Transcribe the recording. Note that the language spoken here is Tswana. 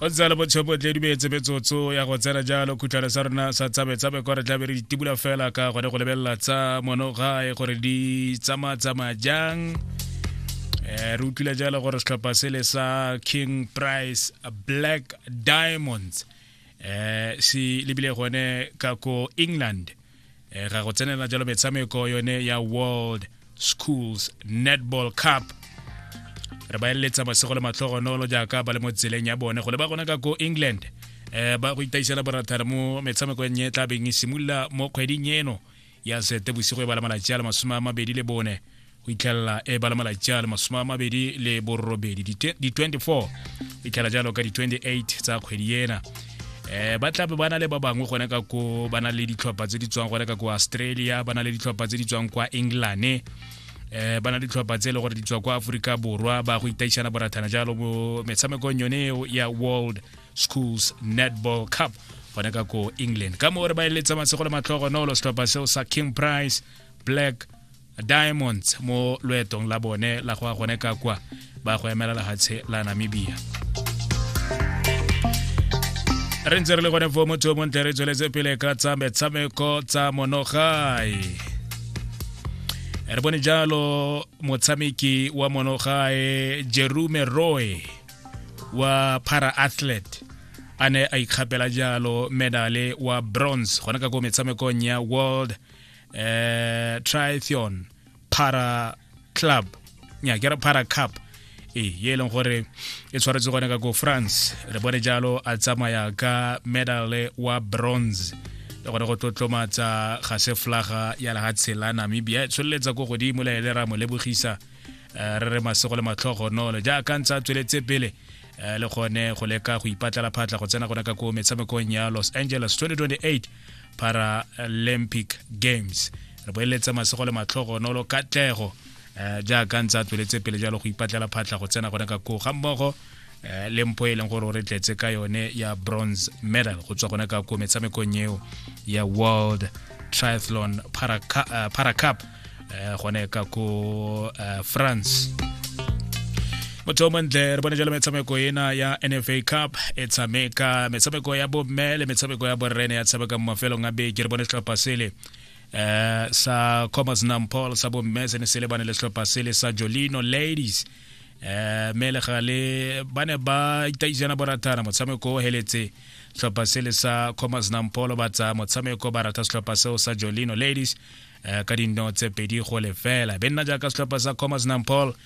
o tsala botshepo tle dumetse metsotso ya go tsena jalo khutlhana sa rona sa tsabetsabe kwa re tlabe re ditibula fela ka gone go lebelela tsa mono gae gore di tsamatsamaya jang um re utlwile jalo gore setlhopha sele sa king price black diamonds um se lebile gone ka ko england um e ga go tsenela jalo metshameko yone ya world schools netball cup re ba eletsa masego le matlhogonolo jaaka ba le mo tseleng ya bone go le ba gona ka ko england um ba go itaisela borathara mo metshamekong e tla beng e simolola mo kgweding eno ya sete bosigo e bala malatsi a le masome a mabedi le bone go itlhelela e ba le malatsi a le masome a mabedi le borobedi di-24 go itlhela jalo ka di-28 tsa kgwedi ena eh ba tlabe ba na le ba bangwe gone ka ko ba na le ditlhopha tse di tswang gone ka ko australia ba na le ditlhopha tse di tswang kwa england eh ba na le ditlhopha tse e le gore di tswa kwa aforika borwa ba go itaišana borathana jalo mo metshamekong yone eo ya world schools netball cup gone ka ko england ka moo re ba eletsa masego le matlhogonolo setlhopha seo sa king price black diamonds mo loetong la bone la go ya gone ka kwa ba go emela lefatshe la namibia re ntse re le gone fo motho o montle re tsweletse pele ka tsa metshameko tsa monogae re bone jalo motshameki wa monogae jerume roy wa para athlete a ne a ikgapela jalo medale wa bronze gone ka ko metshamekong ya world eh triathlon para club nya ke re para cup e ye e leng gore e tshwaretse gone ka ko france re bone jalo a tsamaya ka medale wa bronze le gore go tlotlomatsa ga se flaga ya lehatshe la namibia e tsholeletsa ko godimo le ele ra mo lebogisa eh, re re masego le matlhogo nole jaaka ntse a tsweletse pele eh, le gone go leka go ipatlela phatla go tsena gone ka ko metshamekong ya los angeles 2028 paralympic games re boeletse masego le matlhogo nolo katlego um jaaka ntse a tsweletse pele jalo go ipatlela phatlha go tsena gone ka koo ga mmogo um le mpo e leng gore o re tletse ka yone ya bronze medal go tswa gone ka koo metshamekong eo ya world triathlon paracup para eh, gone ka ko eh, france motho o montle re bone jalo metshameko ena ya nfa cup e tshameka metshameko ya bomme le metshameko ya borrene ya tshameka mo mafelong a beke re bone setlhopha sele eh sa Comas Nampol sa bomme se ne se lebane le setlhopha sele sa Jolino Ladies eh mele gale ba ne ba itaisana boratana motshameko o heletse setlhopha sele sa Comas Nampol ba tsa motshameko ba rata setlhopha seo sa Jolino Ladies um ka dino tse pedi go lefela be nna jaaka setlhopha sa commerce nampol